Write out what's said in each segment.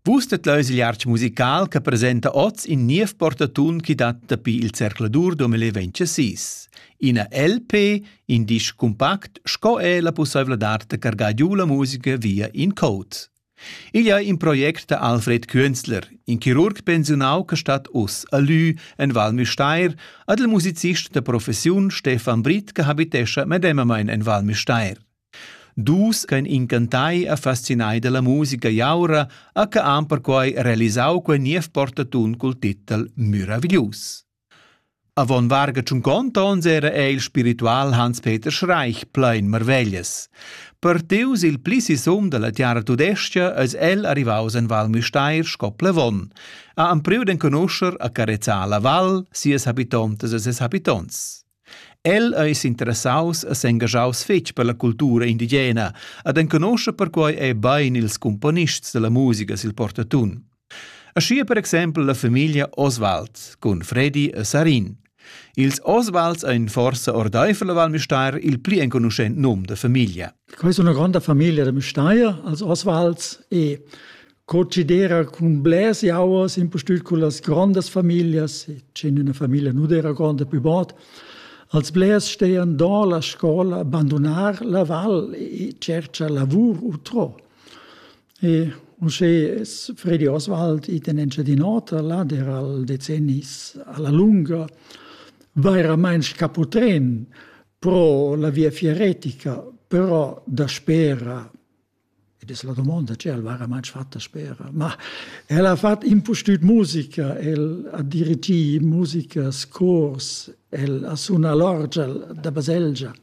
Vus det leus il iartg musical che presenta oz in niev portatun chi dat dapi il zercladur 2026. Ina LP, in disc compact sco er la pussaivladad da cargar giu la musica via in code. Igl è in project da Alfred Künzler, in chirurg pensiunau che stat us a Lü en Val Müstair, ad il musicist da professiun Stefan Britt che habitescha medemamain en Val Müstair. Dus ch'ein incantai e fascinai dalla musica jaura ha que han perquei realisau quei niev portatun cul titel meraviglius. Avon varga tschunconta onns era ei il spiritual Hans-Peter Schreich plein marveglias. Partius il pli sisum dalla tiara tudescha eis el arrivaus en Val Müstair sco plevon. Ha empriu d'enconuscher a carezzar la val, sias habitontas e ses habitonts. El ei s'interessaus e s'engaschaus fetg per la cultura indigena ed enconoscha perquei ei bein ils cumponists dalla musica sil portatun. Aschia per exempel la famiglia Oswald cun Fredi e Sarin. Ils Oswalds ein forsa ordeifer la Val Müstair il pli enconuschent num da famiglia. Quei è una grande famiglia de Müstair, als Oswalds e Co cedera cun blers jauers impustüt con las grandas familias, che in üna famiglia nu d'eira gronda pü bod, als blers stean do la scola, bandunar la val e tscherchar lavur utrò. E uschè es Fredi Oswald it in Engiadin'Ota, là dera'l decennis a la lunga, vairamaing scaputrän pro la via fieretica, però daspera Ed es la domonda, tge el vaira main fatta spera. Ma el ha fat impustüt musica, el ha dirigì musicas, cors, el ha sunà l'orgel da baselgia,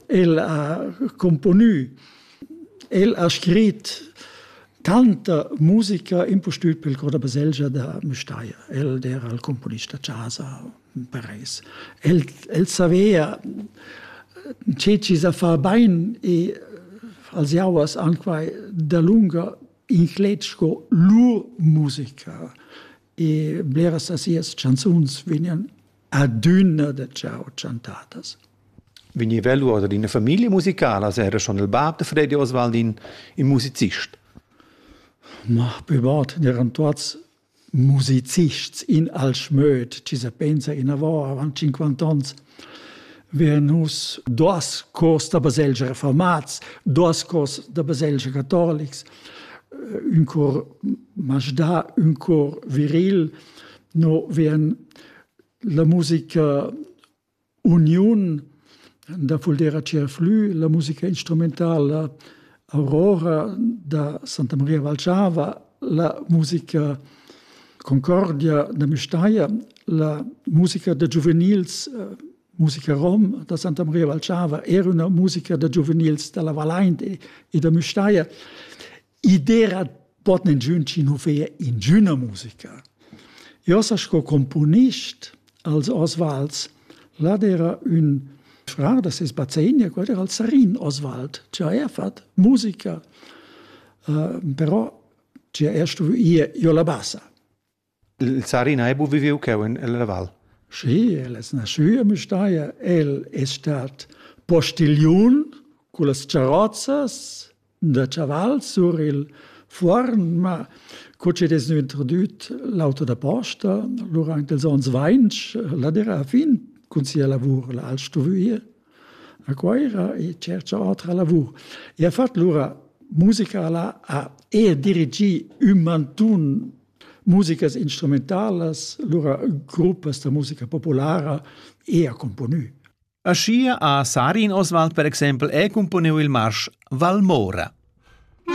el ha componü, el ha scrit tanta musica impustüt pel cor da baselgia da Müstair. El d'era il componist da chasa, Paris. El, el savea tge ci sa fa bain e als jauers anquai dalunga inclet sco lur musica e bleras da sias chanzuns vegnan adüna da ciao chantadas. Vegniva lur ad ina famiglia musicala, era schon il bab de Freddy Oswaldin, il musicist. Ma, bebot, eran tuots musicists in al schmöd, ci se pensa inavò avant 50 ans, wir nus dos cors da baselgia reformats, dos cors da baselgia catolics, un cor Majda, un cor viril, no vien la musica uniun da Fuldera Tscherflü, la musica instrumentala Aurora da Santa Maria Valgiava, la musica Concordia da Müstair, la musica da giuvenils, eh, musica rom da Santa Maria Valgiava, era una musica da giuvenils dalla Vallain e, e da Müstair. I dera pot ningün chi nu feia ingüna musica. Io sa sco componist als Osvalds, là era un frar da ses bazegner, quel era il Sarin Oswald, che ha er fat musica, uh, però che er stuvo ir io la bassa. Il Sarina ei buca viviu cheu en la val. Schi, el es nascü a Müstair, el es stat postigliun con las charozzas da chaval sur il fuorn, ma co chi'd es gnü introdüt l'auto da posta lura aint ils ons vainch, la d'eira fin cun sia lavur là al stuvüir a Cuoira e tschercha otra lavur. E ha fat lura musica là, ha e dirigì ün mantun musicas instrumentalas, lura gruppas da musica populara e ha componü. Aschia ha Sarin Oswald per exempel è componiu il marsch Valmora.